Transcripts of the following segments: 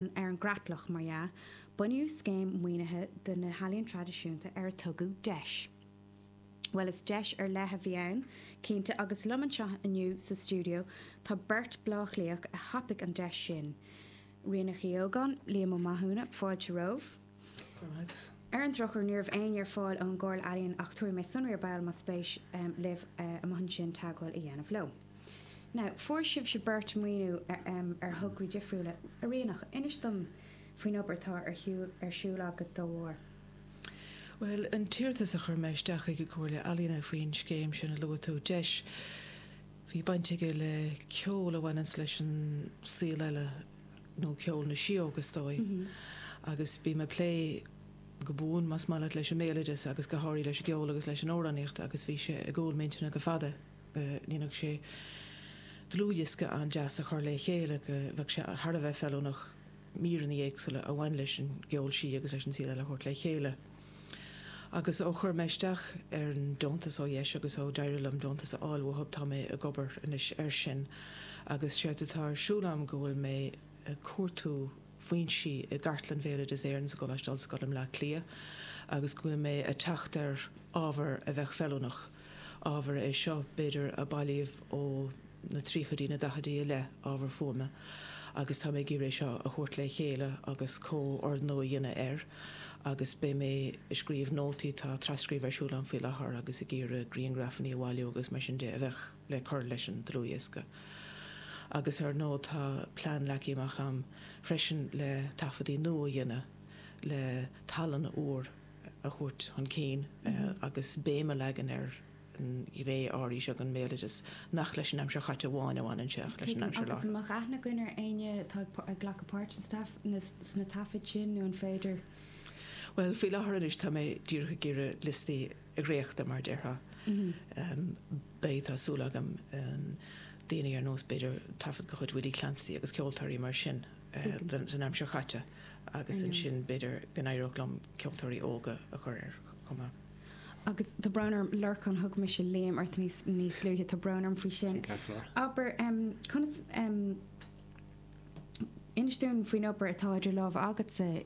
ar an gcreatlach, mar dhea, bunaíodh scéim maoinithe do na healaíon traidisiúnta ar a tugadh deis. Bhuel, is deis ar leith a bhí ann, cinnte, agus liom anseo inniu sa stiúideo tá beirt Bhleá Cliathach a thapaigh an deis sin, Ríonach Uí Ógáin, Liam Ó Mathúna, fáilte romhaibh. Ar an drochuair ní raibh éinne ar fáil ón gComhairle Ealaíon ach tabharfaidh mé sonraí ar ball más spéis libh amuigh ansin teagmháil a dhéanamh leo. Now, fuair sibhse beirt maoiniú ar thograí difriúla a Ríonach, inis dom faoin obair atá ar siúl agat dá bharr. Bhuel, an t-iarratas a chuir mé isteach chuig an gComhairle Ealaíne faoin scéim sin a luaigh tú, deis, bhí baint aige le ceol a bhaineanns leis an saol eile, nó ceol na síóg is dóigh agus bím ag plé go buan más maith leat leis an mbéaloideas agus go háirithe leis an gceol agus leis an amhránaíocht agus bhí sé i gcúl m'intinne go fada go ndéanfadh sé dlúthdhiosca an-deas a chur le chéile go bheadh sé thar a bheith feiliúnach míreanna éagsúla a bhain leis an gceol sí agus leis an saol eile a thabhairt le chéile. Agus ó chuir mé isteach ar an deontas ó dheis agus ó d'éirigh liom deontas a fháil uathu tá mé ag obair anois air sin agus séard atá ar siúl agam go bhfuil mé ag cuartú foinsí i gCartlann Bhéaloideas Éireann sa gColáiste Ollscoile i mBleá Cliath agus go bhfuil mé ag teacht ar ábhar a bheadh feiliúnach Ábhar é seo, b'fhéidir, a bailíodh ó na tríochaidí, na daichidí i leith, ábhar fuaime, agus tá mé ag iarraidh é seo a thabhairt le chéile agus comhordnú a dhéanamh air agus beidh mé ag scríobh nótaí, tá tras-scríobh ar siúl a'm faoi láthair agus ag iarraidh grianghrafannaí a bhailiú agus mar sin de a bheadh le cur leis an dlúthdhiosca. Agus ar ndóigh tá plean leagtha amach a'm freisin le taifeadaí nua a dhéanamh le tallann úr, a thabhairt chun cinn agus béim a leagan ar an ngné áirithe seo den mbéaloideas nach leis an aimsir chaite amháin a bhaineann sé ach leis an aimsir láithreach. An mbeadh aithne againn ar éinne atá ag glacadh páirt sna taifid sin nó an féidir. Bhuel, faoi láthair anois tá mé díreach ag iarraidh liostaí a dhréachtadh mar a déarfá. Beidh, tá súil agam, daoine ar nós b'fhéidir taifead de chuid Willie Clancy agus ceoltóirí mar sin den aimsir chaite. Agus ansin b'fhéidir go n-éireodh liom ceoltóirí óga a chur air chomh maith. Agus tá brón orm, Lorcán, thug mise Liam ort níos luaithe, tá brón orm faoi sin. Abair, conas, inis dúinn faoin obair atá idir lámha agatsa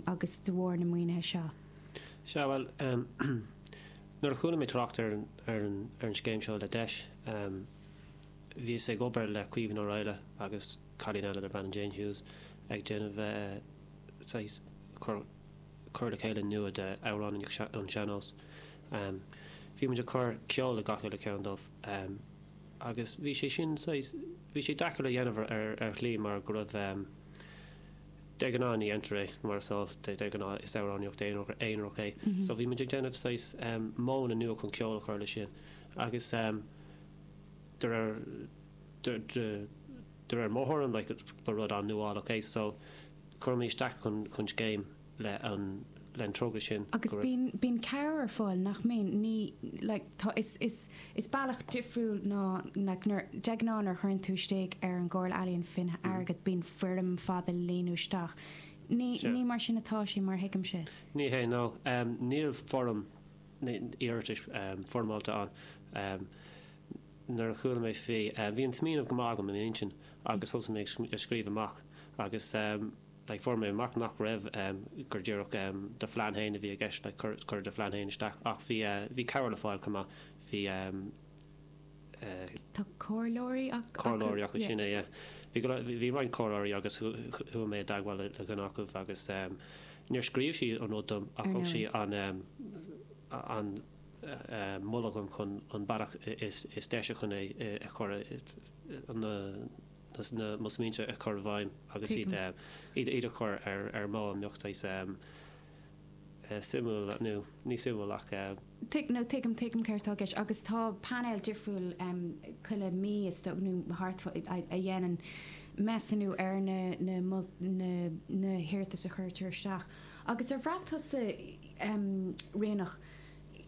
agus de bharr na maoinithe seo. Sea, bhuel, nuair a chuala mé trácht ar an scéim seo le deis, bhíos ag obair le Caoimhín Ó Raghallaigh agus. cailín eile darb ainm Jane Hughes ag déanamh saghas cur le chéile nua de amhráin sean-nóis. Bhí muid ag cur ceol le gach uile ceann dóibh agus bhí sé sin saghas, bhí sé deacair a dhéanamh ar shlí mar go raibh, de ghnáth ní dhéantar é mar is eol, de ghnáth is amhránaíocht aonair é so bhí muid ag déanamh saghas modhanna nua chun ceol a chur leis sin agus de réir, de réir mo thuairim like ba rud an-nuálach é so cuireadh mé isteach chun chun scéim le an le an togra sin go Agus raibh bíonn bíonn cabhair ar fáil nach mbíonn? Ní like tá is is is bealach difriúil ná like nuair de ghnáth nuair a chuireann tú istigh ar an gComhairle Ealaíon faoi choinne airgid bíonn foirm fada le líonadh isteach. Ní ní mar sin atá sé mar a thuigimse. Ní hé no em níl foirm iarratais em foirmeálta ann em. nuair a chuala mé faoi, bhí an smaoineamh go maith agam i m'intinn agus thosaigh mé ag scríobh amach agus like fuair mé amach nach raibh, gur díreach do phlean féin a bhí i gceist like cuir cuir do phlean féin isteach ach bhí eh bhí cabhair le fáil chomh maith, bhí ehm eh tá comhairleoirí acu, comhairleoirí acu yeah, sin é yeah, bhí go leor, bhí roinnt comhairleoirí agus chuaigh mé i dteagmháil le le duine acu agus ehm níor scríobh sí an rud dom ach thug sí an ehm an moladh dom chun an bealach is deise chun é a chur mo smaointe a chur i bhfeidhm agus iad a chur ar modh a mbeadh saghas suimiúil nó ní suimiúil ach. Tuigim nó tuigim tuigim céard atá i gceist agus tá painéal difriúil chuile mí is dócha nó thart faoi a dhéanann measúnú ar na hiarratais a chuirtear isteach agus ar bhraith tusa Ríonach,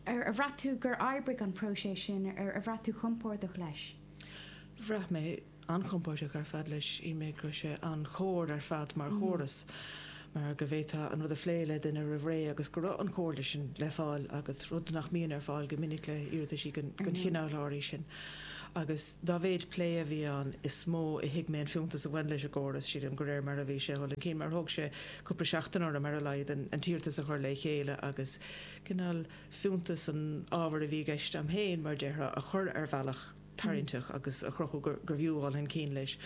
Ar bhraith tú gur oibrigh an próiseas sin, ar bhraith tú compordach leis? Bhraith mé an-chompordach ar fad leis. Shíl mé go raibh sé an-chomair ar fad mar chóras mar go bhféadfá an rud a phlé le duine roimh ré agus go raibh an chomhairle sin le fáil agat, rud nach mbíonn ar fáil go minic le hiarrataisí den chineál áirithe sin. Agus dá mhéid plé a bhí ann is mó a thuig mé an fiúntas a bhain leis an gcóras. Sílim de réir mar a bhí sé a dhul chun cinn mar thóg sé cúpla seachtain orm ar a laghad an t-iarratas a chur le chéile agus cineál fiúntas an ábhair a bhí i gceist a'm féin, mar a déarfá, a chur ar bhealach tarraingteach agus a chruthú gur bhfiú a dhul chun cinn leis.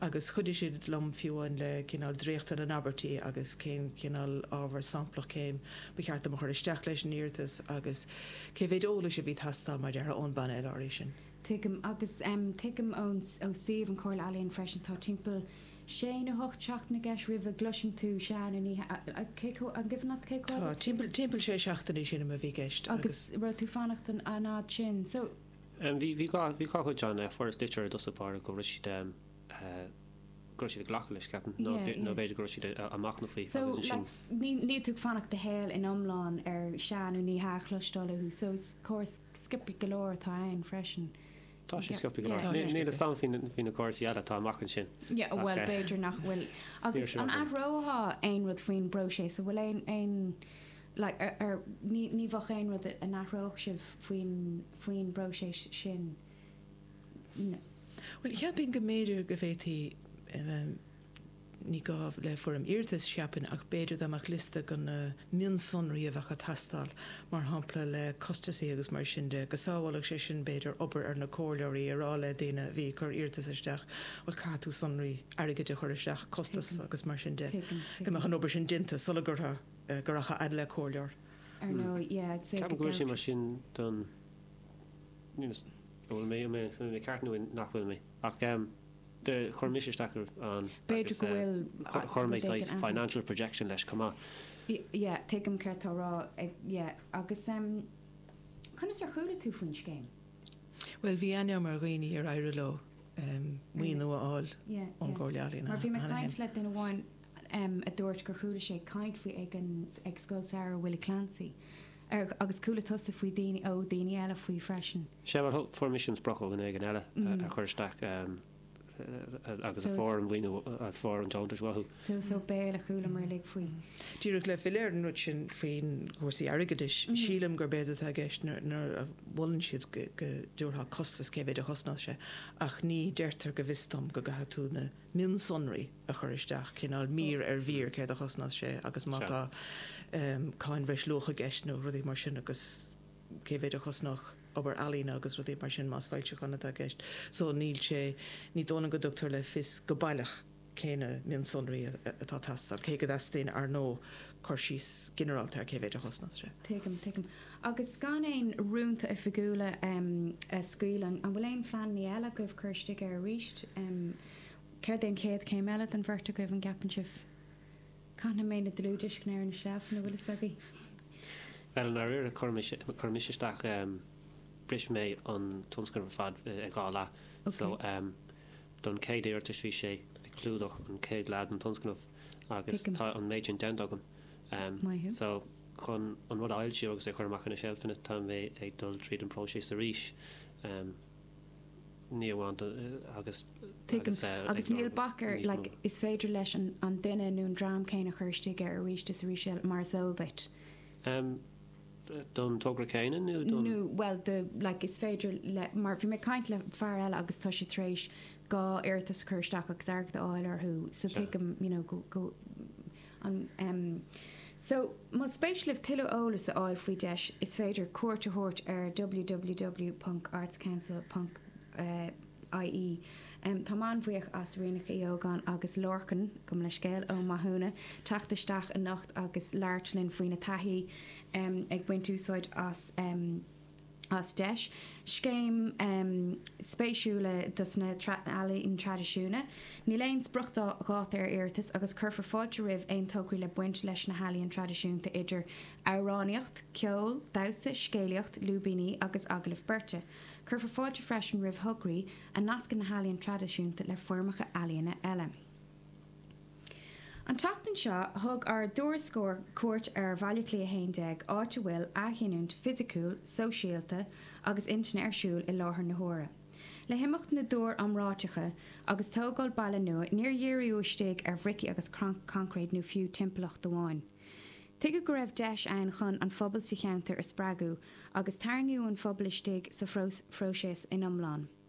Agus chuidigh siad liom fiú amháin le cineál dréachtadh na n-abairtí agus cén cineál ábhar samplach cén ba cheart dom a chur isteach leis an iarratas agus cé mhéid eolais a bhí teastáil, mar a déarfá, ón bpainéal áirithe sin. Tuigim. Agus tuigim ó suíomh an Chomhairle Ealaíon freisin tá timpeall sé nó 8 seachtaine i gceist roimh a gcloiseann tú sea nó ní hea an cuimhin leat cé chomh Tá, timpeall, timpeall sé seachtainí sin an t-am a bhí i gceist agus. Agus raibh tú ag fanacht an an fhad sin so. Em bhí, bhí gá, bhí gá chuid Seán eh fuaireas litir i dtosach báire go raibh siad em, eh go raibh siad ag glacadh leis ceapaim nó Yeah, nó yeah. b'fhéidir go raibh siad ag machnamh faoi So agus ansin like ní, níl tú ag fanacht do shaol in iomlán ar sea nó ní hea a chloisteáil uathu so is córas scioptha go leor atá ann freisin. Tá sé scioptha go Yeah, tá sé leor. Níl a scioptha. fhios agam faoi na- faoi na cúrsaí eile atá amach ansin. Yeah, Ach, bhuel, eh, b'fhéidir nach bhfuil. Agus Níl a fhios an agam. athrófá aon rud faoin bpróiseas? An bhfuil aon, aon, like, ar, ar, ní, ní bheadh aon rud a athródh sibh faoin, faoin bpróiseas sin? N- Bhuel, cheapfainn go mb'fhéidir go bhféadfaí, em, em, Ní gá le foirm iarratais, cheapfainn, ach b'fhéidir dá mbeadh liosta de na mionsonraí a bheadh ag teastáil, mar shampla le costasaí agus mar sin de, go sábhálfadh sé sin b'fhéidir obair ar na comhairleoirí a rá le duine a bhí ag cur iarratas isteach bhuel caithfidh tú sonraí airgid a chur isteach, costas agus mar sin de, go mbeadh an obair sin déanta sula rachadh a fhad le comhairleoir. Ceapaim go bhfuil sé mar sin don, an bhfuil mé ceart nó nach bhfuil mé ach. de, chuir mise isteach ann agus B'fhéidir go bhfuil chuir mé rud éigin saghas ann. financial projection leis chomh maith. Yeah, tuigim céard tá tú a rá, yeah. Agus ehm conas ar chuala tú faoin scéim? Bhuel, bhí aithne agam ar dhaoine ar éirigh leo ehm maoiniú a fháil ón gComhairle Ealaíon cheana féin. Mar bhí mé ag caint le duine amháin ehm a dúirt gur chuala sé caint faoi ag an, ag Scoil Samhraidh Willie Clancy. ar agus chuala tusa faoi daoine ó daoine eile faoi freisin? Sea, mar fuair mise an sprioc ó dhuine éigin eile a chuir isteach agus a fuair an maoiniú agus fuair an deontas uathu. So, so béal a chualamar uilig faoi. Díreach le filleadh ar an rud sin faoi chúrsaí airgeadais, sílim gurb éard atá i gceist nuair a mholann siad go dtabharfá costas cé mhéid a chosnódh sé ach ní deirtear go bhfios dom go gcaithfidh tú na mionsonraí a chur isteach, cineál mír ar mhír céard a chosnódh sé agus má tá cáin bhreis luach i gceist nó rudaí mar sin agus cé mhéid a chosnódh obair ealaíne agus rudaí mar sin más foilseachán atá i gceist. So níl sé, ní dóigh liom go dtugtar le fios go baileach cé na mionsonraí atá ag teastáil, cé go dteastaíonn, ar ndóigh, cur síos ginearálta ar cé mhéid a chosnódh sé. Tuigim, tuigim. Agus gan aon rúnta oifigiúla a scaoileadh, an bhfuil aon phleananna eile agaibh cur isteach air arís? Céard é an chéad chéim eile don bheirt agaibh, an gceapann sibh? Caithfidh mé na dlúthdhioscaí ar na seilf, an bhfuil fhios agaibh? Bhuel i ndáiríre, chuir mise isteach, bhris mé an tionscnamh ar fad i dhá leath. So, don chéad iarratas bhí sé ag clúdach an chéad leath den tionscnamh agus tá an méid sin déanta agam. Am maith. So, chun an rud a fhoilsiú agus é a chur amach ar na seilfeanna, tá mé ag dul tríd an bpróiseas arís. Am, ní amháin don, agus, Tuigim. Agus níl bac ar, like, is féidir leis an duine nó an dream céanna cur isteach air arís is arís eile, mar is eol duit. Am, don togra céanna nó don? Nó, bhuel, do, like, is féidir le, mar bhí mé ag caint le fear eile agus tá siad tar éis dhá iarratas a chur isteach agus airgead a fháil orthu. So, tuigim, you know, go, go, So, más spéis libh tuilleadh eolais a fháil faoi deis is féidir cuairt a thabhairt ar www.artscouncil.ie Tá mé an-bhuíoch as Ríonach uí Ógáin agus Lorcan, gabhaim leithscéal, Ó Mathúna teacht isteach anocht agus labhairt linn faoina taithí ag baint úsáid as as deis, scéim speisialta dos na ealaíon traidisiúna. Níl aon spriocdháta ar iarratais agus cuirfear fáilte roimh aon tograí le baint leis na healaíon traidisiúnta idir amhránaíocht, ceol, damhsa, scéalaíocht, lúibíní agus agallaimh bheirte. Cuirfear fáilte freisin roimh thograí a nascann na healaíon traidisiúnta le foirmeacha ealaíona eile. An tseachtain seo, thug ár dtuairisceoir cuairt ar Bhaile Átha Cliath 11, áit a bhfuil athghiniúint fisiciúil, sóisialta agus intinne ar siúl i láthair na huaire. Le himeacht na dtúr iomráiteacha agus tógáil baile nua, níor díríodh isteach ar bhrící agus coincréit nó fiú timpeallacht amháin. Tuigeadh go raibh deis ann chun an pobal sa cheantar a spreagadh agus tarraingíodh an pobal isteach sa phróiseas ina iomláine.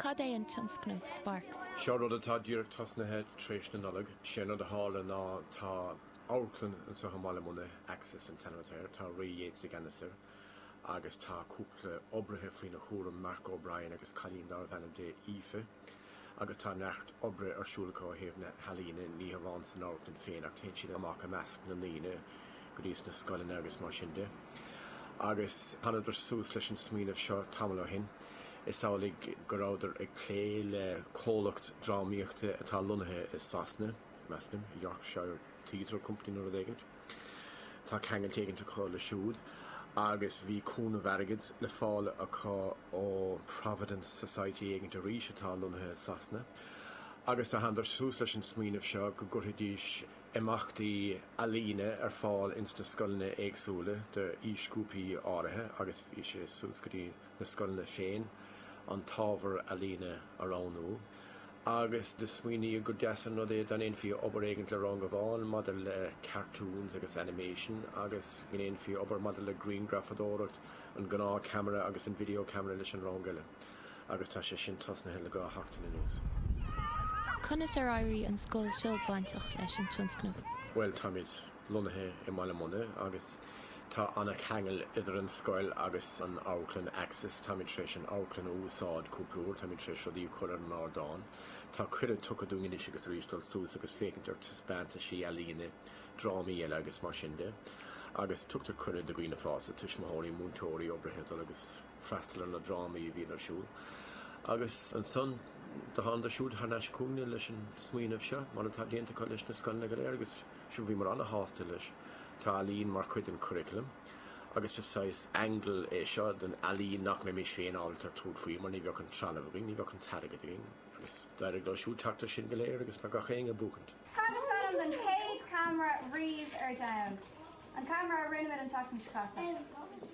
Cad é an tionscnamh Sparks? Seo rud atá díreach tosnaithe tar éis na Nollag. Sé an rud a tharla ná tá Amharclann ansa i mBaile Munna, Axis, an t-ainm atá air. Tá Ray Yeates i gceannas air agus tá cúpla oibrithe faoina chúram, Mark O'Brien agus cailín darbh ainm di Aoife, agus tá neart oibre ar siúl acu ó thaobh na healaíne, ní hamháin san amharclann féin ach téann siad amach i measc na ndaoine go dtí na scoileanna agus mar sin de. Agus thánadar suas leis an smaoineamh seo tamall ó shin. Is amhlaidh go rabhadar ag plé le comhlacht drámaíochta atá lonnaithe i Sasana. Measaim Yorkshire Theatre Company nó rud éigint. Tá ceangailt éigint acu le siúd agus bhí cúnamh airgid le fáil acu ó Providence Society éigint arís atá lonnaithe i Sasana agus thánadar suas leis an smaoineamh seo go gcuirfidís imeachtaí ealaíne ar fáil ins na scoileanna éagsúla d'aoisghrúpaí áirithe agus bhí sé suas go dtí na scoileanna féin an t-ábhar ealaíne a roghnú agus do smaoiníodh gur deas an rud é dá ndéanfaí obair éigin le rang amháin maidir le cartoons agus animation agus go ndéanfaí obair maidir le griangrafadóireacht, an gnáth ceamara agus an video camera leis an rang eile agus tá sé sin tosnaithe le dhá sheachtain anuas. Conas ar éirigh an scoil seo bainteach leis an tionscnamh? Bhuel, táimid lonnaithe i mBaile Munna agus tá an-cheangal idir an scoil agus an amharclann Axis. Táimid tar éis an amharclann a úsáid cúpla uair. Táimid tar éis rudaí a chur ar an ardán. Tá cuireadh tugtha dúinn anois agus arís dul suas agus féachaint ar thaispeántais ealaíne, drámaí eile agus mar sin de. Agus tugtar cuireadh do dhaoine fásta, tuismitheoirí, múinteoirí, oibrithe a dhul agus freastal ar na drámaí a bhíonn ar siúl. Agus ansan do thánadar siúd thar n-ais chugainn leis an smaoineamh seo mar atá déanta acu leis na scoileanna go léir agus Sea, bhíomar an-sásta leis. Tá ealaín mar chuid den churaclam agus is saghas aingle é seo den ealaín nach mbeimis féin ábalta tabhairt faoi mar ní bheadh an trealamh againn, ní bheadh an t-airgead againn. Agus d'éirigh leo siúd teacht air sin go léir agus tá gach éinne ag buachaint. Cad is ainm don chéad cheamara riamh ar domhan? An ceamara a rinne muid an tseachtain seo caite.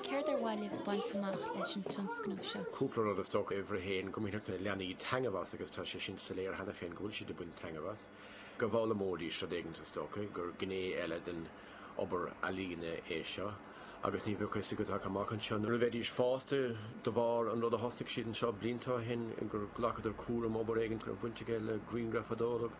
Céard ba mhaith libh baint amach leis an tionscnamh seo? Cúpla rud is dócha. Uimhir a haon, go mbainfeadh na leanaí taitneamh as agus tá sé sin soiléir cheana féin go bhfuil siad ag baint taitneamh as. Go bhfoghlaimeoidís rud éigin is dócha, gur gné eile den obair ealaíne é seo agus ní bheadh a fhios agat ach amach anseo nuair a bheidís fásta de bharr an rud a thosaigh siad anseo blianta ó shin gur ghlacadar cúram obair éigin a mbeadh baint aige le grianghrafadóireacht.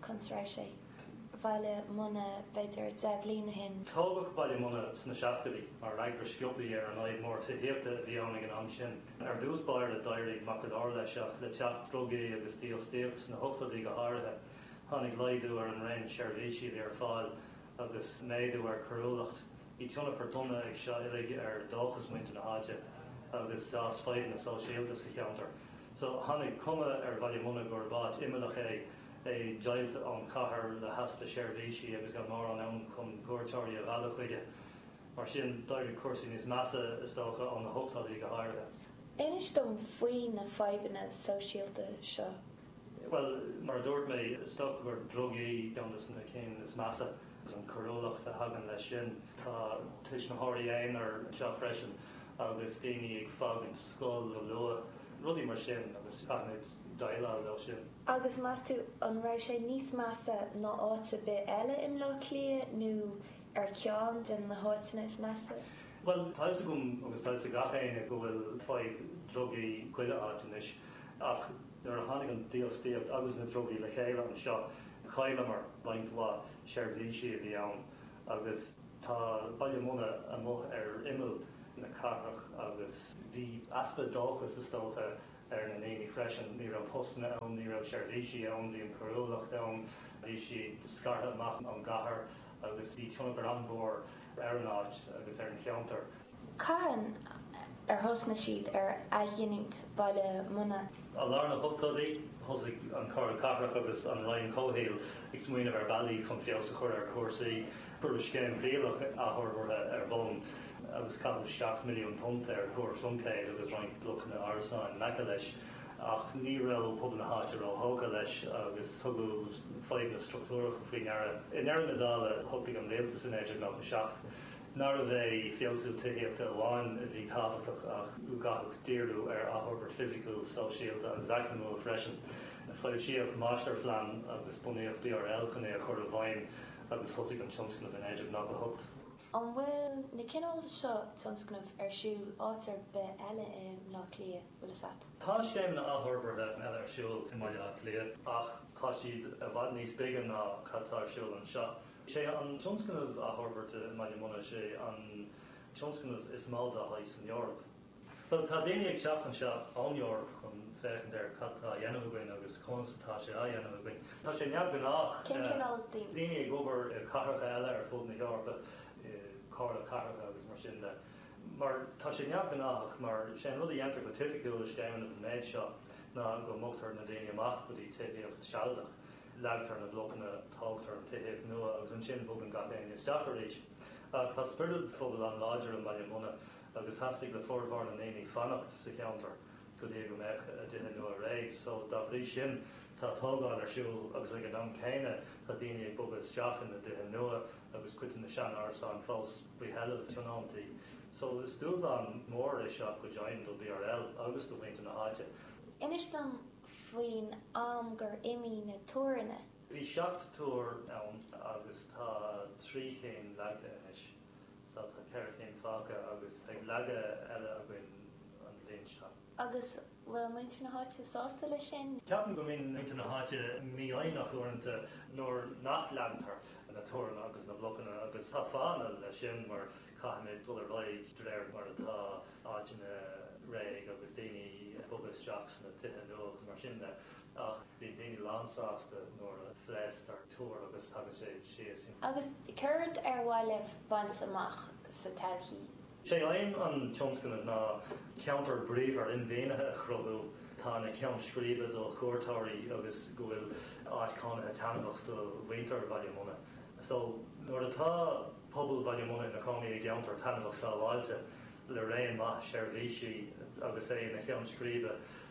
Constráice sé. Bhaile Munna b'fhéidir deich mbliana ó shin. Tógadh Baile Munna sna seascaidí mar fhreagra sciobtha ar an fhadhb mór tithíochta a bhí ann ag an am sin. Ar dtús báire d'éirigh maith go leor leis ach le teacht drugaí agus dífhostaíocht sna hochtóidí go háirithe tháinig laghdú ar an raon seirbhísí a bhí ar fáil agus méadú ar coiriúlacht. Bhí tionchar dona ag seo uilig ar dóchas muintir na háite agus d'fhás fadhbanna sóisialta sa cheantar. So tháinig cuma ar Bhaile Munna gurb áit imeallach é. é deighilte ón chathair le heaspa seirbhísí agus gan mórán ann chun cuairteoirí a mhealladh chuige. Mar sin, d'éirigh cúrsaí níos measa, is dócha, ó na hochtóidí go háirithe. Inis dom faoi na fadhbanna sóisialta seo. Bhuel, mar a dúirt mé, is dócha gur drugaí ceann de na cinn is measa, agus an choiriúlacht a thagann leis sin. Tá tuismitheoirí aonair anseo freisin agus daoine ag fágaint scoil go luath, rudaí mar sin, agus caithfimid déileáil leo sin. Agus meas tú an raibh sé níos measa ná áit ar bith eile i mBleá Cliath nó ar cheann de na háiteanna is measa? Bhuel, tá a fhios agam agus tá a fhios ag gach éinne go bhfuil fadhb drugaí chuile áit anois ach nuair a tháinig an dífhostaíocht agus na drugaí le chéile anseo chailleamar roinnt mhaith seirbhísí a bhí ann agus tá Baile Munna amuigh ar imeall na cathrach agus bhí easpa dóchais is dócha ar na daoine freisin. Ní raibh postanna ann, ní raibh seirbhísí ann, bhí an choiriúlacht ann, bhí siad scartha amach ón gcathair agus bhí tionchar an-mhór ar an áit agus ar an cheantar. Cathain ar thosnaigh siad ar athghiniúint Baile Munna? I lár na hochtóidí, thosaigh an Comhairle Cathrach agus an Roinn Comhshaoil ag smaoineamh ar bhealaí chun feabhas a chur ar chúrsaí. Cuireadh scéim thrialach athfhorbartha ar bun agus caitheadh 7 milliún punt ar Thúr Phluincéid agus roinnt blocanna árasáin in aice leis ach ní raibh pobal na háite róthógtha leis agus tugadh fadhbanna struchtúracha faoi ndeara. I ndeireadh na dála, shocraigh an rialtas i 1997 nárbh é feabhsú tithíochta amháin a bhí tábhachtach ach go gcaithfí díriú ar athfhorbairt fisiciúil, sóisialta agus eacnamúil freisin. Foilsíodh máistirphlean agus bunaíodh BRL chun é a chur i bhfeidhm. agus thosaigh an tionscnamh i naoi déag nócha 8. An bhfuil na cineál seo tionscnamh ar siúl áit ar bith eile i mBleá Cliath? Bhfuil fhios a't? Tá scéimeanna athfhorbartha eile ar siúl i mBaile Átha Cliath ach tá siad i bhfad níos beaga ná cad tá ar siúl anseo. Is é an tionscnamh athfhorbairte i mBaile Munna, is é an tionscnamh is mó dá shaghas san Eoraip. Bhuel, tá daoine ag teacht anseo ón Eoraip chun féachaint ar cad tá á dhéanamh againn agus conas atá sé á dhéanamh againn. Tá sé neamhghnách. Cén cineál daoine? Daoine ag obair i cathracha eile ar fud na hEorpa, i gcomhairlí cathrach agus mar sin de. Mar tá sé neamhghnách mar sé an rud a dhéantar go tipiciúil i scéimeanna den méid seo ná go mbogtar na daoine amach go dtí tithíocht sealadach, leagtar na blocanna, tógtar an tithíocht nua agus ansin bogann gach éinne isteach arís. Ach tá spiorad phobail an-láidir i mBaile Munna. agus theastaigh le formhór na ndaoine fanacht sa cheantar go dtí go mbeadh a dtithe nua réidh so dá bhrí sin tá atógáil ar siúl agus ag an am céanna tá daoine ag bogadh isteach ina dtithe nua agus cuid de na sean-árasáin fós faoi sheilbh tionóntaí so is dúshlán mór é seo go deimhin do BRL agus do mhuintir na háite. Inis dom faoin am gur imigh na túranna. Bhí seacht túr ann agus tá trí chinn leagtha anois. Sea, tá ceithre cinn fágtha agus beidh leagan eile againn an bhliain seo. Agus bhfuil muintir na háite sásta leis sin? Ceapaim go mbíonn muintir na háite mífhoighneach uaireanta nuair nach leagtar na túranna agus na blocanna agus tá fáthanna leis sin mar caithfimid dul ar aghaidh de réir mar atá áiteanna réidh agus daoine ag bogadh isteach sna tithe nua agus mar sin de. Ach bíonn daoine lánsásta nuair a phléasctar túr agus tagann sé síos. Agus céard ar mhaith libh baint amach sa todhchaí? Is é aidhm an tionscnaimh ná ceantar bríomhar inmharthanaithe a chruthú atá ina cheann scríbe do chuairteoirí agus go bhfuil áit chónaithe taitneamhach do mhuintir Bhaile Munna. So, nuair atá pobal Bhaile Munna ina gcónaí i gceantar taitneamhach sábháilte le raon maith seirbhísí agus é ina cheann scríbe,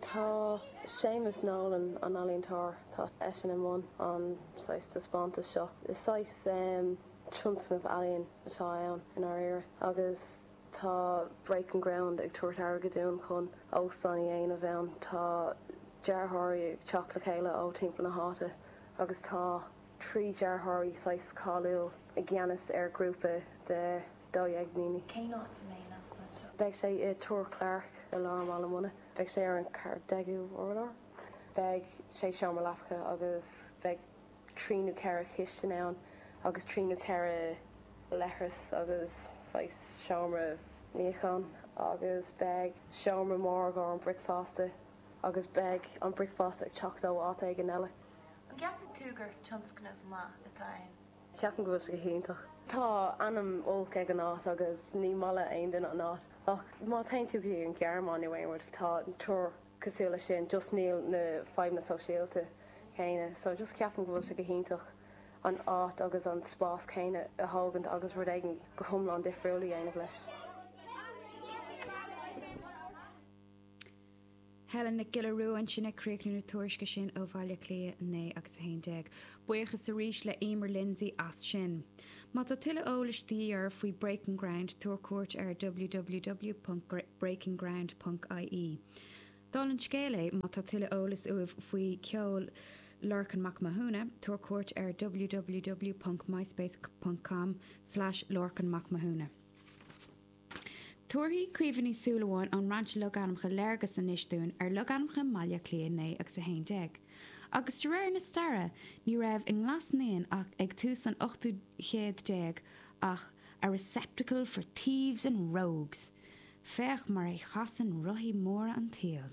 Tá Séamus Nolan, an ealaíontóir, tá eisean i mbun an saghas taispeántas seo. Is saghas tionscnamh ealaíon atá ann i ndáiríre agus tá Breaking Ground ag tabhairt airgead dúinn chun óstán a dhéanamh ann. Tá dearthóirí ag teacht le chéile ó timpeall na háite agus tá trí dearthóirí saghas cáiliúil i gceannas ar ghrúpa de Dhaoine. Cén áit a mbeidh an t-óstán seo? Beidh sé i Túr Clarke i lár Bhaile Munna. Beidh sé ar an 14ú urlár. Beidh sé seomra leapacha agus beidh trí nó ceithre chistin ann agus trí nó ceithre leithreas agus saghas seomra níocháin agus beidh seomra mór don bricfeasta agus beidh an bricfeasta ag teacht ó áit éigin eile. An gceapann tú gur tionscnamh maith atá ann? Ceapaim go bhfuil sé go hiontach. Tá ainm olc ag an áit agus ní maith le aon duine an áit. Ach má théann tú go dtí an Ghearmáin nó aon rud, tá túir cosúil le sin, just níl na fadhbanna sóisialta céanna. So just ceapaim go bhfuil sé go hiontach an áit agus an spás céanna a thógaint agus rud éigin go hiomlán difriúil a dhéanamh leis. Helen Nic Giolla Rua ansin ag críochnú na tuairisce sin ó Bhaile Átha Cliath 9 agus 11. Buíochas arís le Emer Lindsay as sin. Má tá tuilleadh eolais de dhíth oraibh faoi Breaking Ground tabhair cuairt ar www.breakingground.ie. Dála an scéil, má tá tuilleadh eolais uaibh faoi cheol Lorcan Mac Mathúna tabhair cuairt ar www.myspace.com slash lorcanmacmathuna. Tabharfaidh Caoimhe Ní Shúilleabháin ón mBrainse Logainmneacha léargas anois dúinn ar logainmneacha i mBaile Átha Cliath 9 agus 11. Agus de réir na staire ní raibh i nGlas Naíon ag tús an ochtú céad déag ach a receptacle for thieves and rogues! Féach mar a chasann rothaí móra an tsaoil.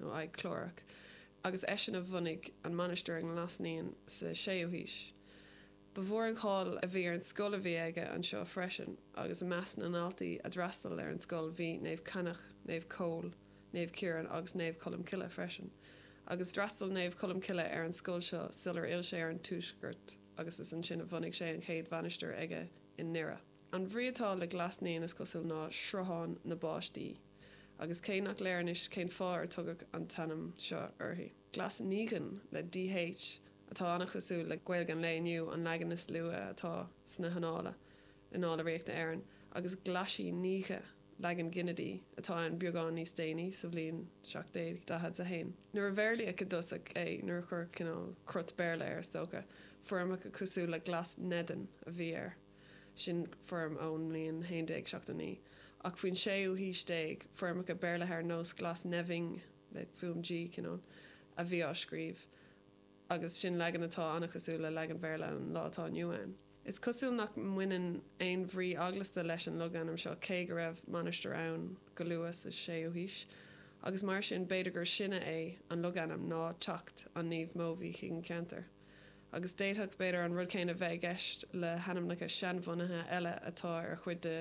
nó aghaidh Clárach, agus eisean a bhunaigh an mainistir i nGlas Naíon sa 6ú haois. Ba mhór an cháil a bhí ar an scoil a bhí aige anseo freisin agus i measc na ndaltaí a d'fhreastail ar an scoil bhí Naomh Cainneach, Naomh Comhghall, Naomh Ciarán agus Naomh Colmcille freisin. Agus d'fhreastail Naomh Colmcille ar an scoil seo sular fhill sé ar an tuaisceart agus is ansin a bhunaigh sé an chéad mhainistir aige i nDoire. An bhrí atá le Glas Naíon is cosúil ná Sruthán na bPáistí agus cé nach léir anois cén fáth ar tugadh an t-ainm seo uirthi. Glas Naoidhean, le dh, atá an-chosúil le Gaeilge an lae inniu, an leagan is luaithe atá sna hannála Annála Ríochta Éireann, agus Glaisi Naoidhe, leagan ginidigh, atá ann beagán níos déanaí sa bhliain 741, nuair a bhéarlaíodh i dtosach é, nuair a cuireadh cineál crot Béarla air is dócha. Foirmeacha cosúil le Glasneden a bhí air. sin foirm ón mbliain 1179, ach faoin séú haois déag, foirmeacha béarlaithe ar nós Glasneving, le fuaim G, cineál, a bhí á scríobh, agus sin leagan atá an-chosúil le leagan Bhéarla an lá atá inniu ann. Is cosúil nach mbaineann aon bhrí eaglasta leis an logainm seo, cé go raibh mainistir ann go luath sa séú haois, agus mar sin, b'fhéidir gur sine é an logainm ná teacht an Naoimh Mobhí chuig an cheantar. agus d'fhéadfadh, b'fhéidir, an rud céanna bheith i gceist le hainmneacha seanbhunaithe eile atá ar chuid de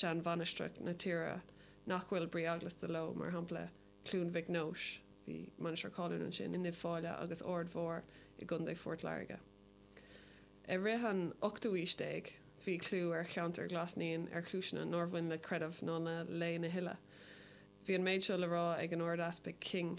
sheanmhainistreacha na tíre nach bhfuil brí eaglasta leo, mar shampla, Cluain Mhic Nóis, bhí mainistir cáiliúil ansin, in Uíbh Fhailí, agus Aird Mhór i gContae Phort Láirge. I rith an ochtú aois déag, bhí clú ar cheantar Ghlas Naíon ar chúiseanna nár bhain le creideamh ná le léann a thuilleadh. Bhí an méid seo le rá ag an Ard-Easpag King.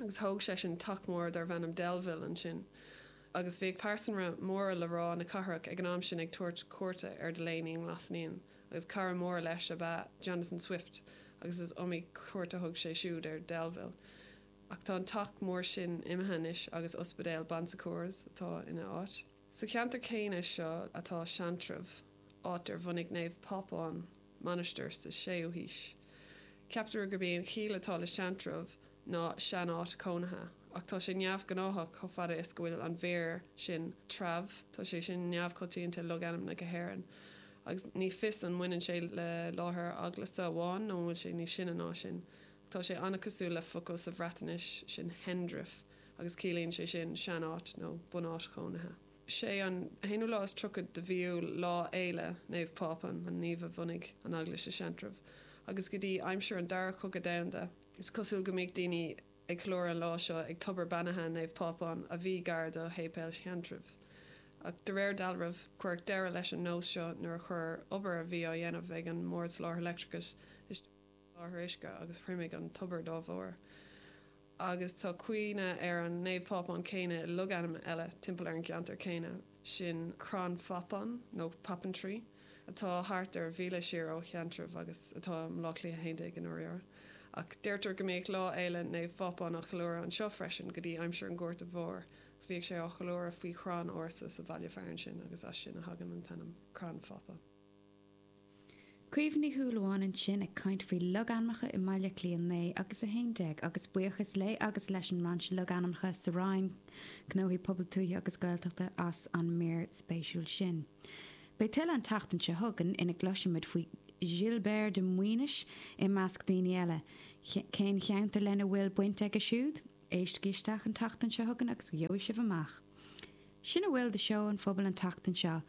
agus thóg seisean teach mór darbh ainm Delville ansin agus bhíodh pearsanra móra le rá na cathrach ag an am sin ag tabhairt cuairte ar Delaney i nGlas Naíon agus cara mór leis ab ea Jonathan Swift agus is iomaí cuairt a thug sé siúd ar Delville ach tá an teach mór sin imithe anois agus ospidéal Bon Secours atá ina áit. Sa cheantar céanna seo atá Seantrabh, áit ar bhunaigh Naomh Pápán mainistir sa 6ú haois. Ceaptar gurb é an chiall atá le Seantrabh ná 'sean-áit cónaithe', ach tá sé neamhghnáthach chomh fada is go bhfuil an mhír sin 'treabh', tá sé sin neamhchoitianta i logainmneacha na hÉireann, agus ní fios an mbaineann sé le láthair eaglasta amháin nó an bhfuil sé níos sine ná sin. Tá sé an-chosúil le focal sa Bhreatnais sin Hendref agus ciallaíonn sé sin sean-áit nó bunáit chónaithe. Sé an t-aonú lá is tríochad de mhí Iúil lá fhéile Naomh Pápán, an naomh a bhunaigh an eaglais i Seantrabh, agus go dtí aimsir an dara cogadh domhanda, is cosúil go mbíodh daoine ag ceiliúradh an lá seo ag tobar beannaithe Naomh Pápán a bhí gar do shéipéal Sheantraibh. Ach de réir dealraimh, cuireadh deireadh leis an nós seo nuair a chuir obair a bhí á dhéanamh ag an mBord Soláthair Leictreachais isteach ar an lá. láthair uisce agus thriomaigh an tobar dá bharr. Agus tá cuimhne ar an Naomh Pápán céanna i logainm eile timpeall ar an gceantar céanna, sin Crann Phapáin nó Poppintree atá thart ar mhíle siar ó Sheantrabh agus atá i mBleá Cliath 11 i ndáiríre. Ach deirtear go mbíodh Lá Fhéile Naomh Phápán á cheiliúradh anseo freisin go dtí aimsir an Ghorta Mhóir agus bhíodh sé á cheiliúradh faoi chrann ársa sa bhaile fearainn sin agus as sin a thagann an t-ainm Crann Phapáin. Caoimhe Ní Shúilleabháin ansin ag caint faoi logainmneacha i mBaile Cliath 9 agus 11 agus buíochas léi agus leis an mBrainse Logainmneacha sa Roinn Gnóthaí Pobail Tuaithe agus Gaeltachta as an mír spéisiúil sin. Beidh tuilleadh an tseachtain seo chugainn ina gcloisfimid faoi Ghilbéart de Muinis i measc daoine eile. Cén cheantar lena bhfuil baint aige siúd? Éistigí isteach an tseachtain seo chugainn agus gheobhaidh sibh amach. Sin a bhfuil de Seó an Phobail an tseachtain seo.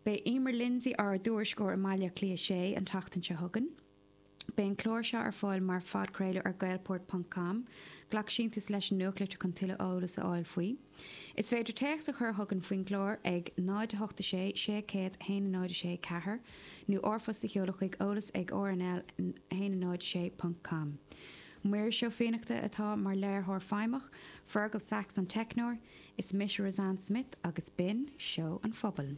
Beidh Emer Lindsay ár dtuairisceoir i mBaile Cliath 6 an tseachtain seo chugainn. Beidh an clár seo ar fáil mar phodchraoladh ar gaelport ponc com. Glac síntiús leis an nuachtlitir chun tuilleadh eolas a fháil faoi. Is féidir téacs a chur chugainn faoin gclár ag 08 6 601 064 4 nó r-phost a sheoladh chuig eolas ag rnl 1 06 ponc com. Muiris Ó Fiannachta atá mar léiritheoir feidhmeach, Fergal Saxe an teicneoir, Is mise Roseanne Smith agus b'in Seó an Phobail.